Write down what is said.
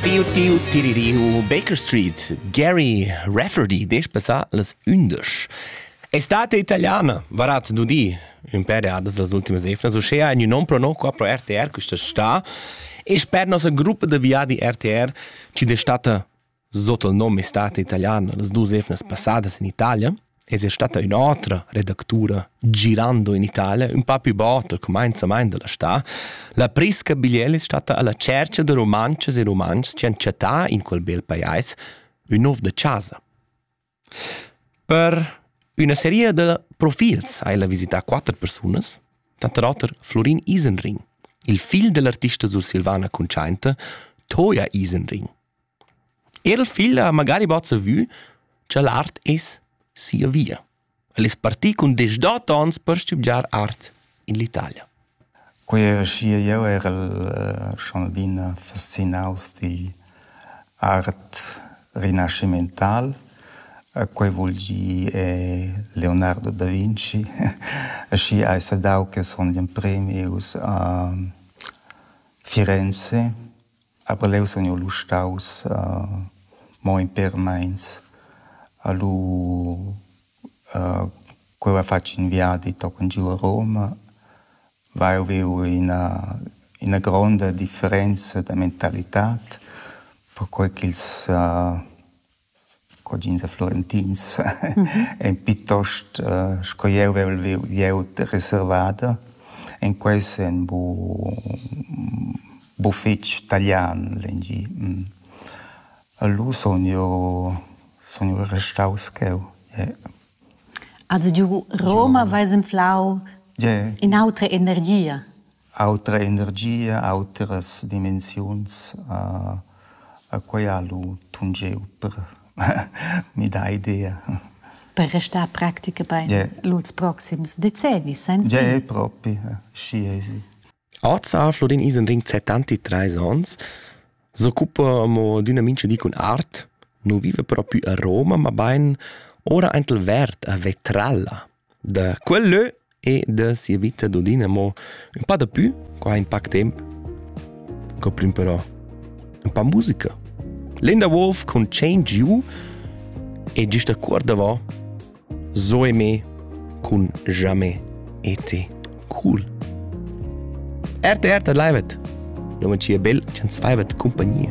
Tiu tiu tiririu Baker Street, Gary Rafferty, dec passà las undisch. Estate italiana, varat nudi un per adas las ultimas efnas, uschea in un non prono qua pro RTR questa sta e sper nossa gruppa de viadi RTR ci destata sotto il nome Estate Italiana, las dus efnas passadas in Italia. Ins è stata ün'otra redactura girando in Italia, ün pa più bota, cumenzamaint della sta. La Prisca Bigliel è stata alla cerca de romances e romans che han chattà in quel bel pajais ün nov de casa. Per üna serie de profils hai la visità quatter persunas, tanter oter Florin Isenring, il figl dell'artista sursilvana cuntschainta Toja Isenring, Er il figl ha magari bod savü cha l'art es sia via. El es partì cun deschdot ons per stübgiar art in l'Italia. Quei era schi jeu era il Chanaldin fascinaus digl art rinascimental. Quei vul dir è Leonardo da Vinci. Schi hai sadau che sun gl'empremi us a Firenze Aber leu sun jeu lu staus mo in pêr meins a lu ch'jeu hai fatg in viadi tochen giu a Roma, vai e viu ina ina gronda differenza da mentalitad perquei ch'ils cugins e florentins ein piuttost sco jeu vevel viu glieud reservada. En quei senn bu bu fetg talian l'engi. Lu sun jeu sun jeu restaus cheu. Also giu Roma veis enflau in'autra energia. Autra energia, autras dimensiuns, quai ha lu tungeu per midar idea. Per restar practica bein lur proxims decennis senza? Gie, propi, schi ei si. Oz ha Flodin Isenring settanti treis onns, s'occupa mo d'üna mincha di cun art, nu viva propi a Roma, mabain ora aint il Verd a Vetralla. da quel lö e da sia vita d'Odina amo ün pa dapü, qua in pac temp. Co plüm però ün pa musica. Linda Wolf con Change You e giüst a cuor davò Zoe me con Jamais été cool. RTR live et. Lo man cia bel ch'ans faivat compagnia.